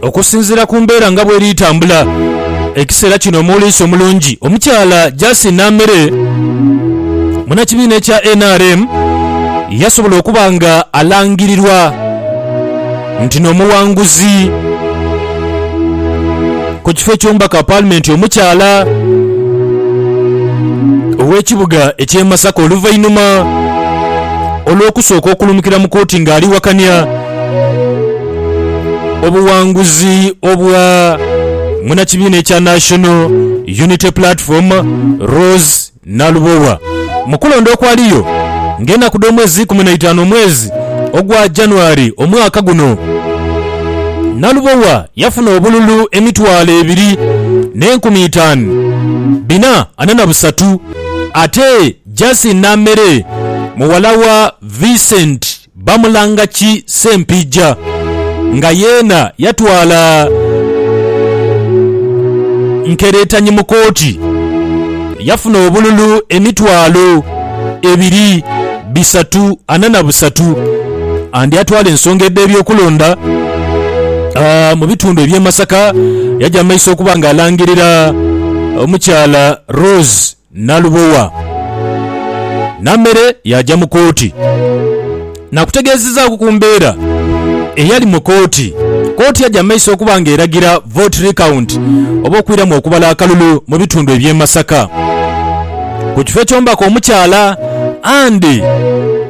Okusinziira ku mbeera nga bweri tambula ekiseera kino omuwuliisi omulungi omukyala Justin Namere munakibiina ekya nrm yasobola okuba nga alangirirwa nti nomuwanguzi ku kifo ekyomubaka wa palimenti omukyala owekibuga ekye Masaka oluvainuma olwokusooka okulumukira mu kooti nga aliwakania Obuwanguzi obwa munakibiina ekya National Unity Platform Rose Nalubowa mu kulonda okwaliyo nga enaku dh'omwezi ikumi naitaanu omwezi ogwa January omwaka guno, Nalubowa yafuna obululu emitwalo ebiri n'enkumi itaan bina ana na busatu ate Jasin Namere muwala wa Vincent. Bamulanga ki Sempijja nga yeena yatwala Nkeretanyi mu kooti yafuna obululu emitwalo ebiri bisatu ana na busatu and atwala ensonga edh'ebyokulonda mu bitundu eby'e Masaka yaja mu maiso okuba nga alangirira omukyala Rose Nalubowa Namere yaaja mu kooti naakutegeezezaaku ku mbeera eyali mu kooti. Kooti yaja mu maiso okuba nga eragira vote recount oba okwiramu okubala akalulu mu bitundu eby'e Masaka ku kifo eky'omubaka omukyala. Andy,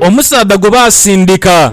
omusaadha gwe baasindika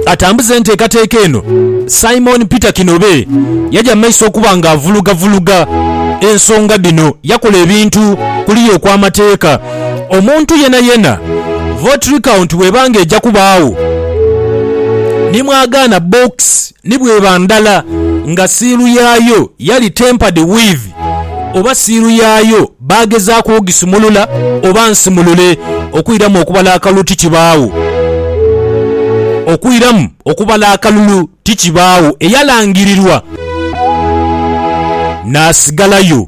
atambuze enteekateeka eno, Simon Peter Kinobe yaja mu maiso okuba ng'avulugavuluga ensonga dhino. Yakola ebintu kuliya okw'amateeka. Omuntu yenayena vote recount bw'eba ng'eja kubaawo ni mwagaana box Ni bw'eba ndala nga siiru yaayo yali tempered with oba siiru yaayo baagezaaku ogisumulula oba nsimulule okwiramu okubala akalulu tikibaagho. Okwiramu okubala akalulu tikibaagho eyalangirirwa n'asigalayo.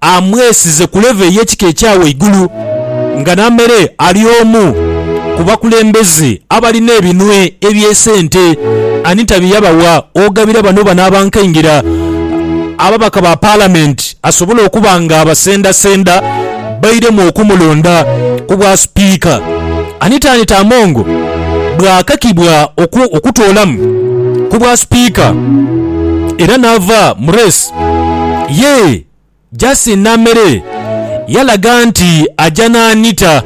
amwesize ku levo ey'ekika ekya waigulu nga Namere ali omu ku bakulembeze abalina ebinwe eby'esente. Anita bye yabawa ogabira bano bano abankaingira ababaka ba Palamenti asobole okuba nga abasendasenda bairemu okumulonda ku bwa Sipiika. Anita Anita Among bwakakibwa okutoolamu ku bwa Sipiika era naava mu reesi, Ye Justin Namere yalaga nti aja n'Anita.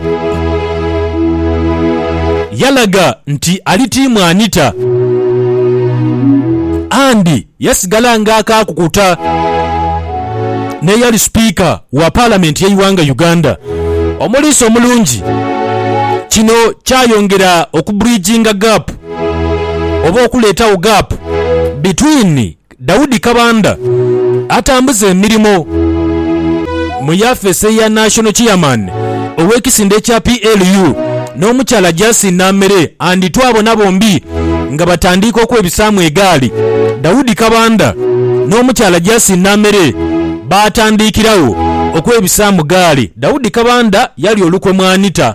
Yalaga nti ali tiimu Anita and yasigala nga akaakukuta n'eyali Sipiika wa Palamenti y'eighanga Uganda, Omuliisa Omulungi. Kino kyayongera oku bridginga gap oba okuleetagho gap between Daudi Kabanda atambuza emirimo mu yafeesi eya National Chairman ow'ekisinde ekya PLU n'omukyala Jasin Namere and twabona bombi nga batandiika okwebisaamu egaali. Daudi Kabanda n'omukyala Jasin Namere baatandiikiragho okwebisaamu gaali. Daudi Kabanda yalya olukwe mu Anita.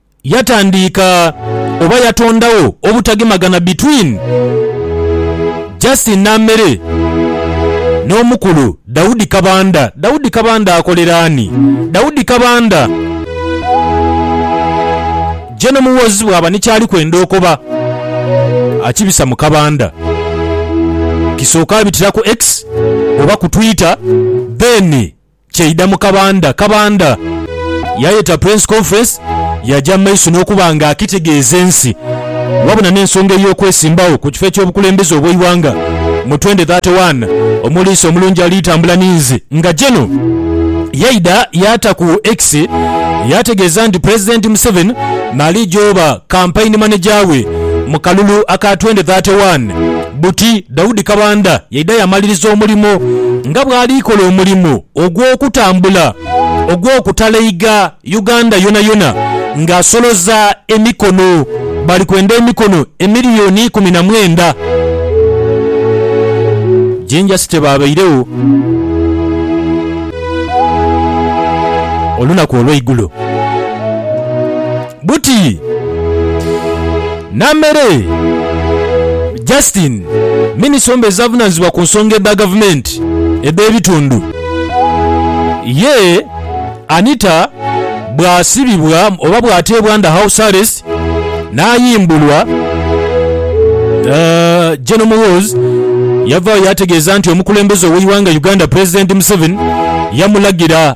yatandiika oba yatondagho obutagemagana between Justin Namere n'omukulu Daudi Kabanda. Daudi Kabanda akolera ani? Daudi Kabanda je n'omuwoozi bwaba ni kyali kwenda okoba akibisa mu Kabanda. Kisooka abitira ku X oba ku Twitter then Kyaidha mu kabandha kabandha, yaayeta Press Conference yaaja mu maiso n'okuba nga akitegeeza ensi wabula n'ensonga ey'okwesimbawo ku kifo eky'obukulembeze obw'eighanga mu twendi thate waani, Omuliisa omulungi ali tambula ni nze nga General. Yaidha yaata ku X yaategeeza nti Pulezidenti Museveni naaliija oba Kampaini Maneja we mu kalulu aka twendi thate waani Buti Daudi Kabanda yaidha yamaliriza omulimo nga bwali kola omulimo ogw'okutambula ogw'okutaleiga Uganda yonayona nga asoloza emikono bali kwenda emikono emiliyoni ikumi na mwenda Jinja City baabairegho olunaku olweigulo. Buti Namere Justine, minisita omubeezi avunaanyizibwa ku nsonga edha gavumenti edh'ebitundu, ye Anita bw'asibibwa oba bw'ateebwa under house arrest n'ayimbulwa, Gen Muhoozi yavaayo yaategeeza nti omukulembeze ow'eighanga Uganda Pulezidenti Museveni yamulagira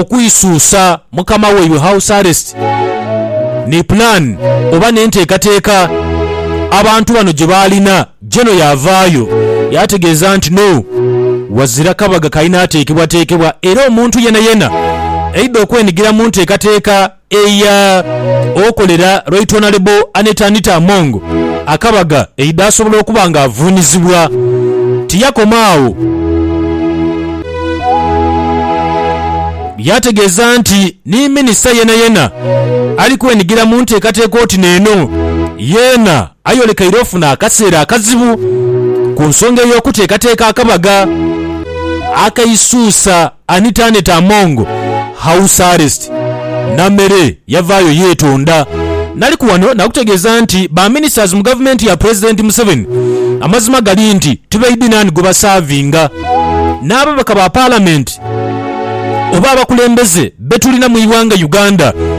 Okwisuusa mukama waibwe, house arrest, ni plan oba n'enteekateeka abantu bano gye baalina. Jeno yaavaayo yaategeeza nti no wazira kabaga kalina ateekebwateekebwa era omuntu yenayena aidha okwenigira mu nteekateeka. Eya okolera Right Honourable Annet Anita Among akabaga eidhasobola okuba nga avuunizibwa. Tiyakoma agho, yaategeeza nti ni minisita yenayena ali kwenigira mu nteekateeka oti neeno yeena ayolekeire ofuna akaseera akazibu ku nsonga ey'okuteekateeka akabaga akaisuusa. Anita Annet Among, House Arrest, Namere yavaayo yeetonda. Naliku wano nakutegeeza nti ba ministers mu gavumenti ya Pulezidenti Museveni amazima gali nti tibaidhi naani gwe basaavinga. N'ababaka ba Palamenti oba abakulembeze be tulina mu ighanga Uganda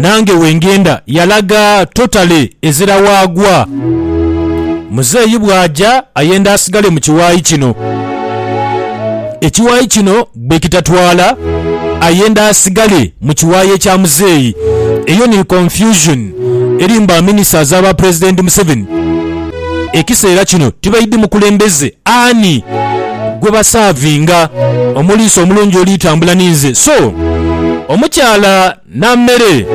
nange wengenda yalaga totally ezira waagwa. Muzeeyi bwaaja ayenda asigale mu kiwaayi kino. Ekiwaayi kino bwekitatwaala ayenda asigale mu kiwaayi ekya muzeeyi. Eyo ni confusion eri mu ba ministers aba president Museveni. ekiseera kino tibaidhi mukulembeze ani gwe basaavinga, omuliisa omulungi oli tambula ni nze, so omukyala na mere.